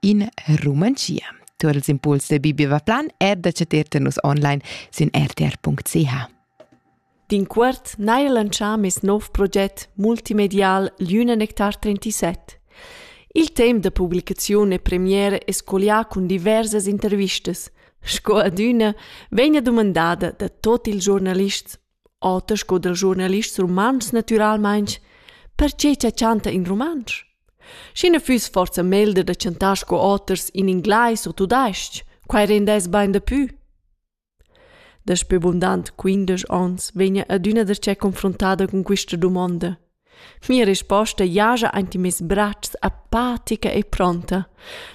in Rumantschia. Tu els impuls de Bibi Vaplan er da ceter nus online sin rtr.ch. D'in quart n'hai lantschà mes nov proget multimedial L'Üna Nectar 37. Il temp da publicaziun e premiere è scolià cun diversas intervistas. Sco adüna vegna dumandada da tot ils giornalists oter sco dal giornalist rumantsch natüralmaing, perche cha chanta in rumantsch? Schi na füss forsa melder da chantar sco oters in inglais u tudais-ch, quai rendess bain dapü. Daspö bundant quindesch ons vegna adüna darcheu confruntada cun quista dumonda. Mia risposta giaja aint in meis bratschs apatica e pronta.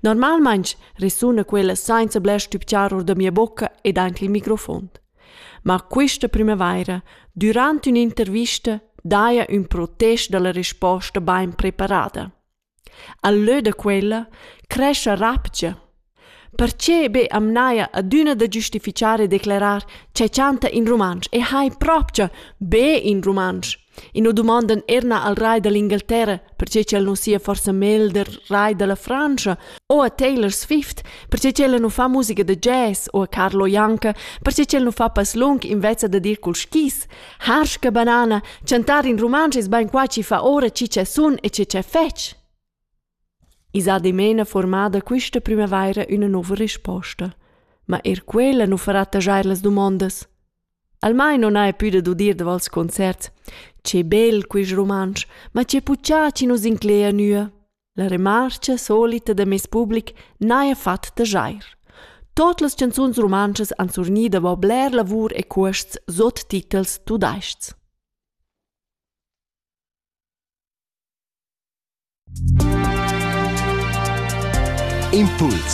Normalmaing resuna quella sainza bler stübgiar our da mia bocca ed aint il microfon. Ma quista primavaira, dürant ün'intervista, daja ün protest da la risposta bain preparada. Al lö da quella crescha rabgia. Perche be am n'haja adüna da giustifichar e declerar cha chanta in rumantsch e hai propcha be in rumantsch. I nu dumondan eir na al rai da l'Ingalterra, perche ch'el nu sia forsa melder rai da la Frantscha, o a Taylor Swift, perche ch'ella nu fa musica da jazz, o a Carlo Janka, perche ch'el nu fa passlung invezza da dir cul skis. Harsch che banana, chantar in rumantsch es bain qua chi fa ora chi cha sun e chi cha fetsch. I s'ha dimena formada quista primavaira üna nouva risposta. Ma eir quella nu farà tagiar las dumondas. Almain non haja pü da dudir davals concerts. Che bel quist rumantsch, ma che puchà chi nu s'inclegia nua. La remarcha solita da meis public n'haja fat tajair. Tot las chanzuns rumantschas han surgni davo bler lavur e cuosts sot titels tudais-chs. Impuls